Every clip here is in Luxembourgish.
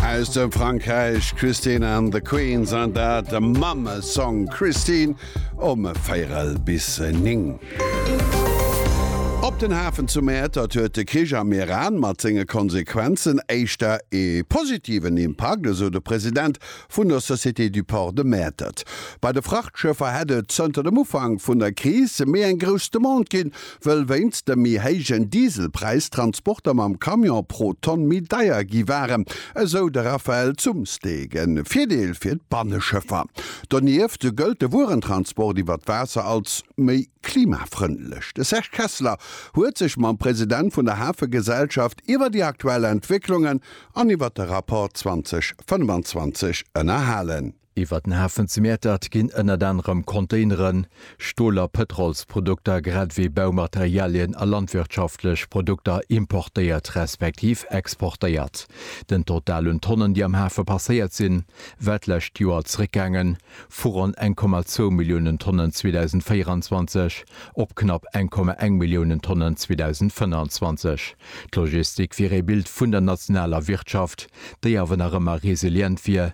Aus dem Frankräich Christine and the Queens an dat de Mamme Song Christine um véierel bis 9. Op den Hafen zu Mäertert huet de Krich am Iran mat senge Konsequenzen éischter ee positiven Impakt, esou de President vun der Société du Port de Mäertert. Bei de Frachtschëffer hätt et zënter dem Ufank vun der Kris méi eng grouss Demande ginn, wëll wéinst dem méi héijen Dieselpräis d'Transporter mam Camion pro Tonn méi deier gi waren, esou de Raphaël Zumsteeg. E Virdeel fir d'Banneschëffer. Donieft gëllt de Wuerentransport iwwer d'Waasser als méi klimafrëndlech. De Serge Kessler huet sech mam President vun der Hafegesellschaft iwwer déi aktuell Entwécklungen an iwwer de Rapport 2025 ënnerhalen. Iwwer den Hafen zu Mäertert ginn ënnert anerem Containeren, Stol a Pëtrolsprodukter, grad ewéi Baumaterialien a landwirtschaftlech Produkter importéiert respektiv exportéiert. Den Total un Tonnen, déi am Hafe passéiert sinn, war d'lescht Joer zeréckgaangen, vu ronn 1,2 Milliounen Tonnen 2024 op knapp 1,1 Milliounen Tonnen 2025. D'Logistik wier ee Bild vun der nationaler Wirtschaft, déi awer nach ëmmer resilient wier,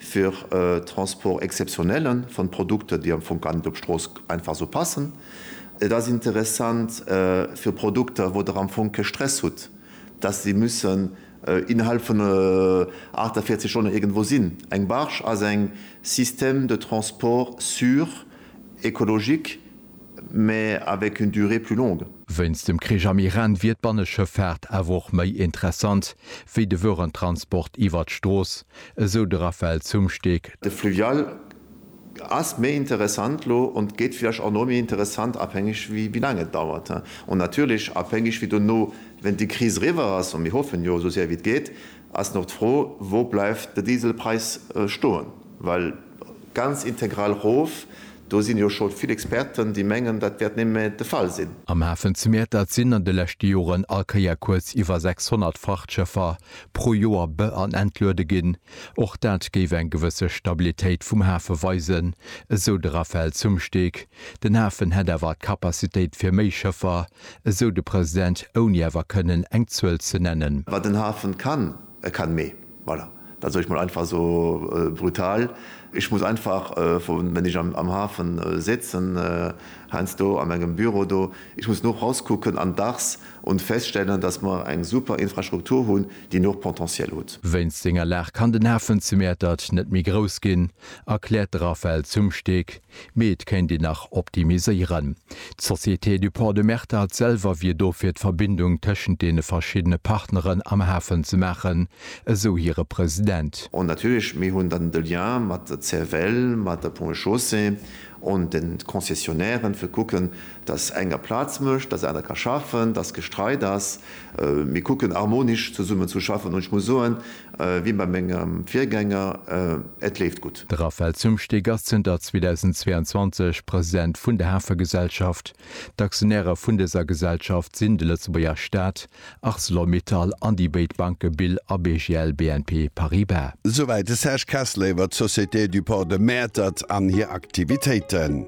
fir e Transport exceptionnelle von Produkten, déi am Fong gar net op d'Strooss einfach esou passen. Et ass interessant fir Produkter, wou Der am Fong kee Stress hutt, dass se müssen innerhalb vun 48 Stonnen iergendwou sinn. Eng Barge ass eng Système de transport sûr, écologique, mais avec une durée plus longue. Wéinst dem Krich am Iran wier d'Banneschëffaart awer och méi interessant wéi de Wuerentransport iwwert d'Strooss, esou de Raphaël Zumsteeg. De Fluvial ass méi interessant elo an gétt villäicht och nach méi interessant, abhängeg wéi laang et dauert an natierlech abhängeg wéi dono, wéint déi Kris eriwwer ass, an mir hoffen jo esou séier wéi et geet, ass nach d'Fro, wou bleift de Dieselpräis stoen, well Ganz integral rof, do sinn jo scho vill Experten, déi mengen, dat wäert némme de Fall sinn. Am Hafen zu Mäertert sinn an de leschte Joren all Kéier kuerz iwwer 600 Frachtschëffer pro Joer be an entluede ginn. Och dat géif eng gewësse Stabilitéit vum Hafe weisen, esou de Raphaël Zumsteeg. Den Hafen hätt awer d'Capacitéit fir méi Schëffer, esou de President, ouni awer kënnen eng Zuel ze nennen. Wat en Hafen kann, e kann méi. Voilà, dat soll ech mol einfach esou brutal. Ech muss einfach, wenn ech am Hafen sitzen, heiansdo a mengem Büro do, ech muss no raus kucken an dachs und feststellen, dass mer eng super Infrastruktur hunn, déi noch Potentiel hutt. Wéinst senger Lag kann den Hafen zu Mäertert net méi grouss ginn, erkläert de Raphaël Zumsteeg. Mee et kéint een nach optimiséieren. D'Société du Port de Mertert selwer wier do fir d'Verbindung tëschent deene verschiddene Partneren am Hafen ze maachen, esou hire President. An natierlech, mir hunn dann de Lien mat der CFL, mat der Ponts et Chaussées an de Concessionnairen, fir kucken, datt enger Plaz mécht, datt aner ka schaffen, datt gestreit ass. Mir kucken harmonisch zesummen ze schaffen. An ech muss soen, Wéi bei mengem Virgänger, et leeft gutt. De Raphaël Zumsteeg ass zënter 2022 President vun der Hafegesellschaft. D'Aktionäre vun dëser Gesellschaft sinn de Lëtzebuerger Staat, Arcelor Mittal an déi béid Banke Bill a BGL BNP Paribas. Souwäit de Serge Kessler iwwer d'Société du Port de Mäertert an hir Aktivitéiten.